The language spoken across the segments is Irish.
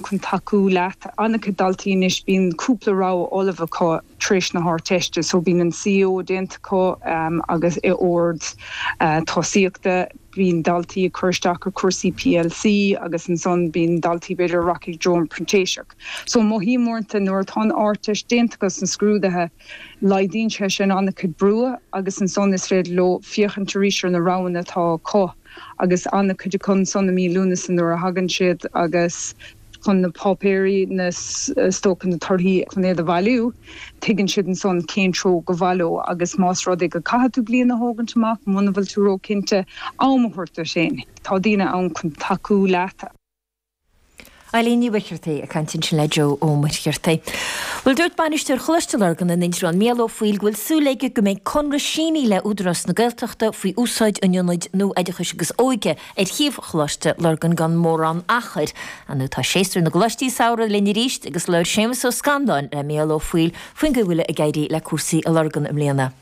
chun tacú leat. An-chuid daltaí anois, bíonn cúpla rogha ullamh acu tar éis na hArdteiste so bíonn an CAO déanta acu agus i ord tosaíochta. Bíonn daltaí ag cur isteach ar cúrsaí plc agus ansan bíonn daltaí b'fhéidir a rachaidh i dtreo an printéiseach. So mothaím uaireanta nuair atá an Ardteist déanta acu 's na scrúdaithe, Laghdaíonn sé sin an-chuid brú agus ansan is féidir leo féachaint arís ar na roghanna atá acu agus an-chuid acu ansan i mí Lúnasa nuair a thagann siad agus chun na páipéirí na stoca na torthaí chun iad a bhailiú tuigeann siad ansan cén treo go mbeidh leo agus más rud é go gcaithfidh tú bliain a thógaint amach muna bhfuil tú róchinnte am a thabhairt duit féin tá daoine ann chun tacú leat. Eilín Ní Mhuircheartaigh ag caint ansin le Joe Ó Muircheartaigh. Bhuel dúirt bainisteoir Choláiste Lurgan in Indreabhán Mícheál Ó Foighil go bhfuil súil aige go mbeidh conradh sínithe le Údarás na Gaeltachta faoi úsáid an ionaid nua oideachais agus óige ar shuíomh Choláiste Lurgan gan mórán achair. Now tá séasúr na gcoláistí samhraidh linn arís agus labhair Séamus Ó Scanláin le Mícheál Ó Foighil faoin gcaoi a bhfuil ag éirí le cúrsaí i Lurgan i mbliana.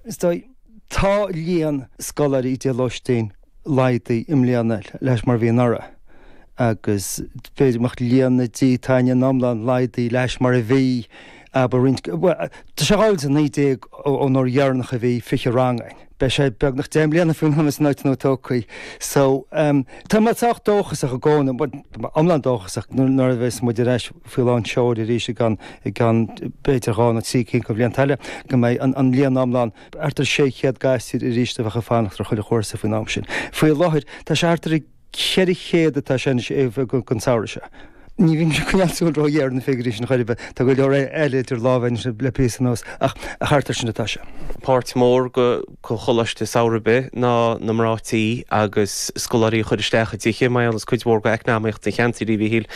Is dóigh, tá líon scoláirí i dtithe lóistín laghdaithe i mbliana leis mar bhí anuraidh agus b'fhéidir go mbeadh líon na dtithe ann in iomlán laghdaithe leis mar a bhí abair roinnt, bhuel, tá sé dhá mhíle is a naoi déag ón uair dheireanach a bhí fiche rang againn. Beidh sé beagnach deich mbliana faoin am a mbeidh an áit nua tógtha. So, tá mé sách dóchasach i gcónaí, bhuel, tá mé iomlán dóchasach nuair a bheas muid ar ais. faoi lán tseoil arís i gceann b'fhéidir dhá nó trí cinn de bhlianta eile, go mbeidh an líon iomlán thart ar 600 gasúr arís a bheadh ag fanacht ar chuile chúrsa faoin am sin. Faoi láthair tá sé thart ar 400 atá sé anois don samhradh seo. Ní bhím ag coinneáil súil ró-ghéar ar na figiúirí sin chor ar bith, tá go leor eile idir lámha anois le píosa anuas, ach thart air sin atá sé. Páirt mhór de. coláiste samhraidh ar bith ná na mná tí agus scoláirí a chur isteach i dtithe, mar aon le cuid mhór de eacnamaíocht an cheantair, a Mhíchíl.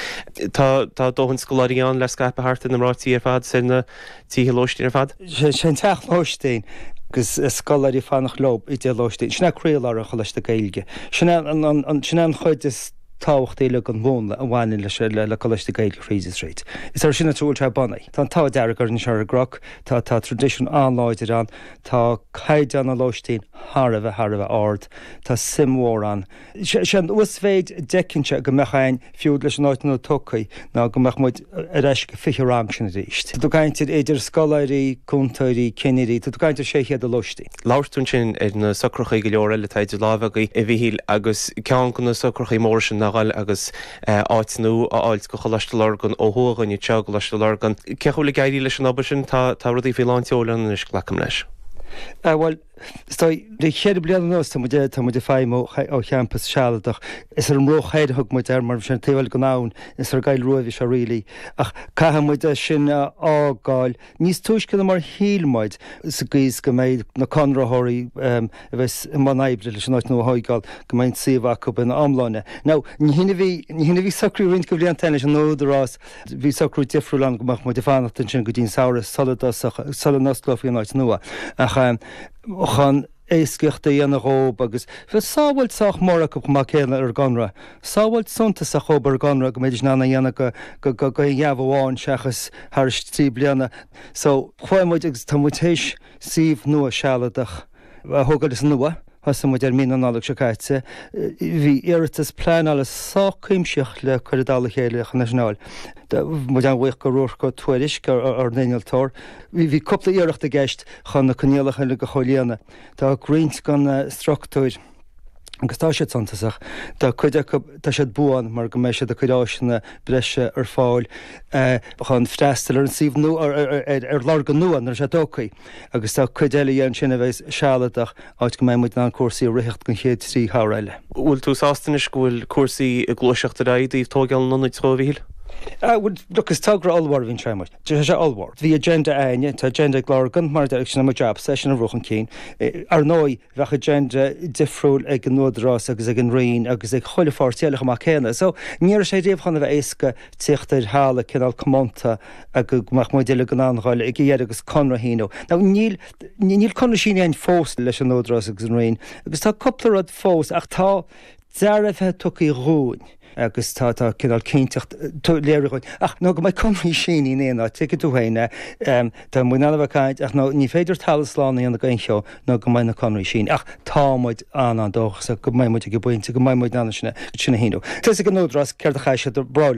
Tá tá dóthain scoláirí ann le scaipeadh thart ar na mná tí ar fad is ar na tithe lóistín ar fad. Sé an teach lóistín agus scoláirí ag fanacht leo i dtithe lóistín, sin é croílár an choláiste Gaeilge. Sin é an sin é an chuid is tábhachtaí le den mhúnla a bhaineann leis le coláiste Gaeilge thríd is thríd. Is air sin atá sé bunaithe. Tá an t-ádh dearg orainn anseo ar an gCnoc, tá tá traidisiún an-láidir ann, Tá caighdeán na lóistín thar a bheith thar a bheith ard. Tá suim mhór ann. Sé an uasmhéid a d'fheicinnse go mbeadh againn, fiú leis an áit nua tógtha, ná go mbeadh muid ar ais sa 20 rang sin arís. Tá tú ag caint ar idir scoláirí, cúntóirí, cinnirí, tá tú ag caint ar 600 i lóistín. Labhairt ansin ar na socrachaí go leor eile atá idir lámha agaibh, a Mhíchíl, agus ceann de na socrachaí móra sin ná an dáil agus. áit nua a fháilt go Choláiste Lurgan ó thuaidh, Ghainimh Teo, Coláiste Lurgan. Cén chaoi a bhfuil ag éirí leis an obair sin, tá rudaí faoi lán tseoil ann anois, glacaim leis. Bhuel, is dóigh, le ceithre bliana anuas tá muid, tá muid ag feidhmiú ó champas sealadach. Is ar an mBruach Thoir a thug muid air mar bhí sé taobh thoir den abhainn, is ar an gCoill Rua a bhí sé really ach caithfidh muid é sin a fhágáil, níos túisce na mar shíl muid, sa gcaoi is go mbeidh na conraitheoirí a bheas i mbun oibre leis an áit nua a thóigeáil, go mbeidh an suíomh acu ina iomláine. Now, ní shin a bhí, ní shin a bhí socraithe roinnt go bhlianta ó shin leis an Údarás, bhí socrú difriúil ann go mbeadh muid ag fanacht ansin go dtí an Samhradh sula dtosódh, sula n-osclófaí an áit nua. Ach chun. éascaíocht a dhéanamh dhób agus bheadh sábháilt sách mór acu chomh maith céanna ar an gconradh. Sábháilt suntasach dhób ar an gconradh go mbeidís in ann a dhéanamh go gheábh amháin seachas thairis trí bliana. So, chuaigh muid agus tá muid théis suíomh nua sealadach a thógáil is now thosaigh muid air mí na Nollag seo caite. Bhí iarratas pleanála sách cuimsitheach le cur i dtoll a chéile chun é sin a fháil. Tá muid an-bhuíoch go Ruairc Ó Tuairisc, ár n-innealtóir. Bhí cúpla iarracht i gceist chun na coinníollacha uilig a chomhlíonadh. Tá roinnt de na struchtúir agus tá siad suntasach, tá cuid acu, tá siad buan mar go mbeidh siad ag cuir áiseanna breise ar fáil chun freastal ar an suíomh nua, ar Lurgan nua nuair atá sé tóigthí agus tá cuid eile dhe ansin a bheas sealadach áit go mbeidh muid in ann cúrsaí a ritheacht don chéad trí shamhradh eile. Bhfuil tú sásta anois go bhfuil cúrsaí ag gluaiseacht ar aghaidh i dtaobh tóigeáil an ionaid, a Mhíchíl? Bhuel, look, is togra ollmhór a bhí ann sé mar. Tá sé ollmhór. Bhí agenda againne, tá agenda ag Lurgan, mar a deir sin é mo jabsa é sin a bhrú chun cinn. Ar ndóigh, bheadh agenda difriúil ag an Údarás agus ag an Roinn agus ag chuile pháirtí eile chomh maith céanna. So, ní raibh sé riamh chun a bheith éasca tíocht ar thalamh cineál comónta go mbeadh muid uilig in ann dul ag a dheireadh agus conradh a shíniú. Now, níl, níl conradh sínithe againn fós leis an Údarás agus an Roinn agus tá cúpla rud fós ach tá dearbhaithe tugtha dhúinn. agus tá tá cineál cinnteacht léirithe dhúinn ach nó go mbeidh conraí sínithe againne, tuigeann tú féin a ehm tá muid in ann a bheith ag caint ach nó ní féidir talamh slán a dhéanamh d'aon cheo nó go mbeidh na conraí sínithe ach tá muid an an dóchasach go mbeidh muid ag an bpointe go mbeidh muid in ann sin a sin a shíniú. Tá a fhios ag an Údarás céard a chaithfidh siad a rá linn.